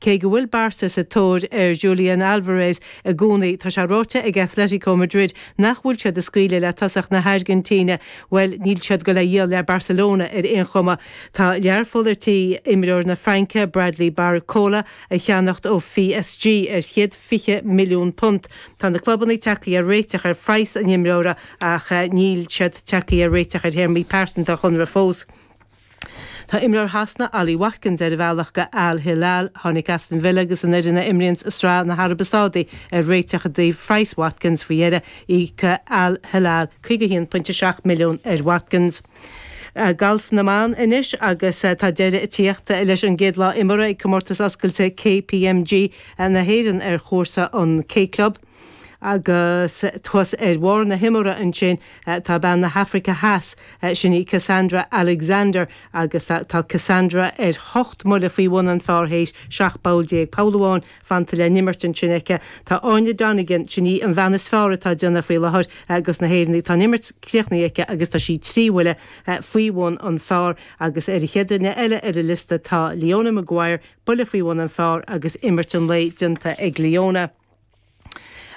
Cé go bhfuil Barca sa tóir ar Julian Alvarez i gcónaí, tá sé ráite ag Athletico Madrid nach bhfuil siad ag scaoileadh le tosaí na hAirgintíne. Bhuel, níl siad go le dhíol le Barcelona ar aon chuma. Tá Learpholl le imreoir na Fraince, Bradley Barcola, a cheannacht ó psg ar chéad fiche milliún punt. Tá na clubannaí tagtha ar réiteach ar phraghas an imreora ach níl siad tagtha ar réiteach ar théarmaí pearsanta a chonradh fós. Tá imreoir Shasana, Ollie Watkins, ar a bhealach go Al Hilal. Tháinig Aston Villa agus an fhoireann a imríonns i Sraith na hAraibe Sádaí ar réiteach i dtaobh phraghas Watkins faoi dheireadh. Íocfaidh Al Hilal £51.7 milliún ar Watkins. Galf na mBan anois agus tá deireadh ag tíocht leis an gcéad lá imeartha ag Comórtas Oscailte KPMG na hÉireann ar chúrsa an K-Club. Agus thuas ar bharr na himeartha ansin, tá bean na hAfraice Theas, sin í Cassandra Alexander agus tá Cassandra ar hocht mbuille faoi bhun an phar théis seacht bpoll déag poll amháin fanta le n-imirt ansin aici. Tá Áine Donegan, sin í an bhean is fearr atá déanamh faoi láthair ag na hÉireannaigh, tá an imirt críochnaithe aici agus tá sí trí bhuille faoi bhun an phar agus ar an chéad duine eile ar an liosta tá Leona Maguire, buille faoi bhun an phar agus imirt an lae déanta ag Leona.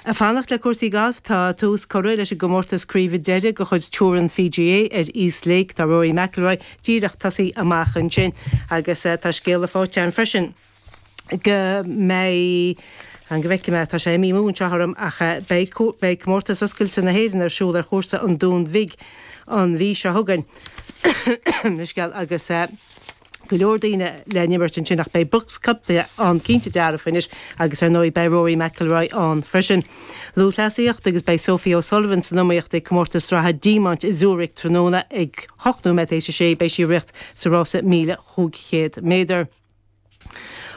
Ag fanacht le cúrsaí gailf, tá tús curtha leis an gcomórtas craoibhe deiridh de chuid Tour an PGA ar East Lake. Tá Rory McIlroy díreach tosaithe amach ansin agus tá scéala faighte againn freisin go mbeidh, fan go bhfeicfidh mé, tá sé i mí Iúil anseo orm, ach beidh Comórtas Oscailte na hÉireann ar siúl ar chúrsa an Dúin Bhig an mhí seo chugainn agus. go leor daoine le n-imirt ansin ach beidh Brooks Koepka ann cinnte dearfa anois agus ar ndóigh beidh Rory McIlroy ann freisin. Lúthchleasaíocht agus beidh Sophie O Sullivan san iomaíocht ag Comórtas Sraithe Diamant i Zurich tráthnóna ag ocht nóiméad tar éis a sé beidh sí ag riocht sa rása míle chúig chéad méadar.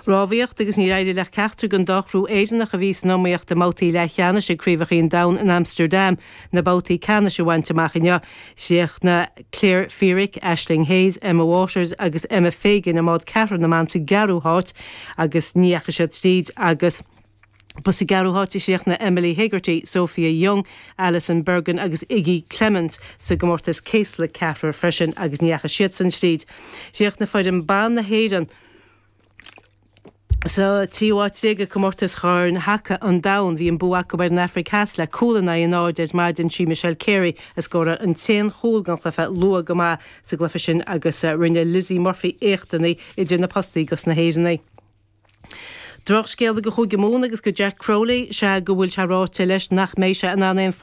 Rámhaíocht agus níor éirigh le ceachtar den dá chriú Éireannach a bhí san iomaíocht i mbabhtaí leathcheannais ag Craobhacha an Domhain in Amsterdam, na babhtaí ceannais a bhaint amach inniu, chríochnaigh Claire Feerick, Aisling Hayes, Emma Waters agus Emma Fagan i mbád ceathrair na mban sa gceathrú háit agus ní dheachaigh siad tríd agus ba sa gceathrú háit a chríochnaigh Emily Hegarty, Sophia Young, Alison Bergin agus Iggy Clements sa gcomórtas céasla ceathrair freisin agus ní dheachaigh siadsan tríd. Chríochnaigh foireann ban na hÉireann. Sa tríú áit déag ag Comórtas Chorn Haca an Domhain, bhí an bua acu ar an Afraic Theas le cúl in aghaidh an náid ar maidin. Sí Michelle Carey a scóráil an t-aon chúl den chluiche luath go maith sa gcluiche sin agus rinne Lizzy Murphy éachtanna idir na postaí dos na hÉireannaigh. Drochscéal do Chúige Mumhan agus do Jack Crowley, sea go bhfuil sé ráite leis nach mbeidh sé in ann aon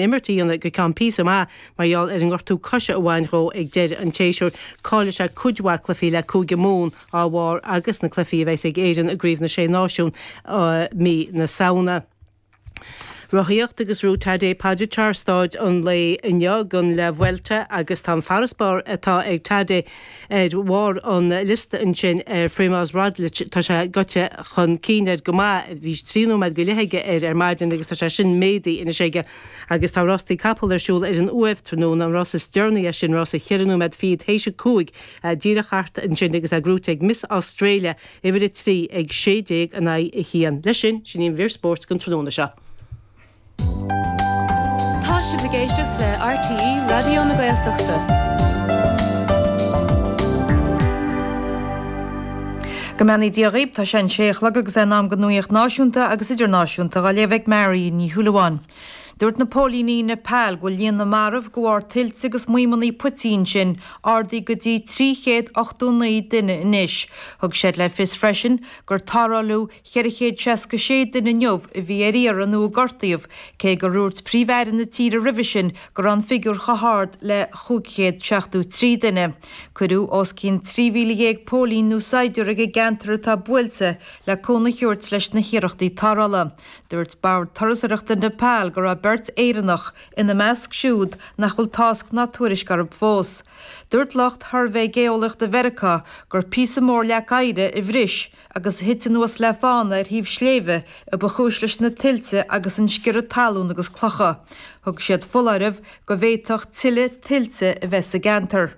imirt a dhéanamh go ceann píosa maith. Mar gheall ar an ngortú coise a bhain dhó ag deireadh an tséasúir, caillfidh sé cuid mhaith cluichí le Cúige Mumhan dá bharr agus na cluichí a bheas ag Éirinn i gCraobh na Sé Náisiún i mí na Samhna. Rothaíocht agus ghruaigh Tadej Pogačar stáid an lae inniu go La Vuelta agus tá an farasbarr atá ag Tadej ar bharr an liosta ansin ar Primoz Roglič. Tá sé gaibhte chun cinn air go maith, bhí trí nóiméad go leith aige air ar maidin agus tá sé sin méadaithe anois aige. Agus tá rastaí capall ar siúl ar an Uaimh tráthnóna, an rás is deireanaí as sin, rás a ceithre nóiméad fichead théis a cúig, díreach thart ansin agus é gruaite ag Miss Australia uimhir a trí ag sé déag in aghaidh a haon. Leis sin, sin í an mhír spóirt don tráthnóna seo. Tá sibh ag éisteacht le RTÉ Raidió na Gaeltachta. Go mbeannaí Dia dhaoib, tá sé an sé a chlog agus é in am go nuaíocht náisiúnta agus idirnáisiúnta dhá léamh ag Mary Ní Shúilleabháin. Dúirt na póilíní i Nepal go bhfuil líon na marbh de bharr tuilte agus maidhmeanna puitigh sin ardaithe go dtí 389 duine anois. Thug siad le fios freisin gur tarráileadh 466 duine inniu a bhí ar iarraidh nó a gortaíodh, cé gur dhúirt Príomh-Aire na tíre roimhe sin go raibh an figiúr chomh hard le 573 duine. Cuireadh os cionn 13,000 póilín nó saighdiúr ag an gceantar atá buailte le cúnamh a thabhairt leis na hiarrachtaí tarrthála. Dúirt Bord Turasóireachta Nepal go raibh beirt Éireannach ina measc siúd nach bhfuil tásc ná tuairisc orthu fós. Dúirt lucht Shuirbhé Geolaíochta Mheiriceá gur píosa mór leac oighre a bhris agus a thit anuas le fána ar thaobh sléibhe a ba chúis leis na tuilte agus an sciorradh talún agus clocha. Thug siad foláireamh go bhféadfadh tuilleadh tuilte a bheith sa gceantar.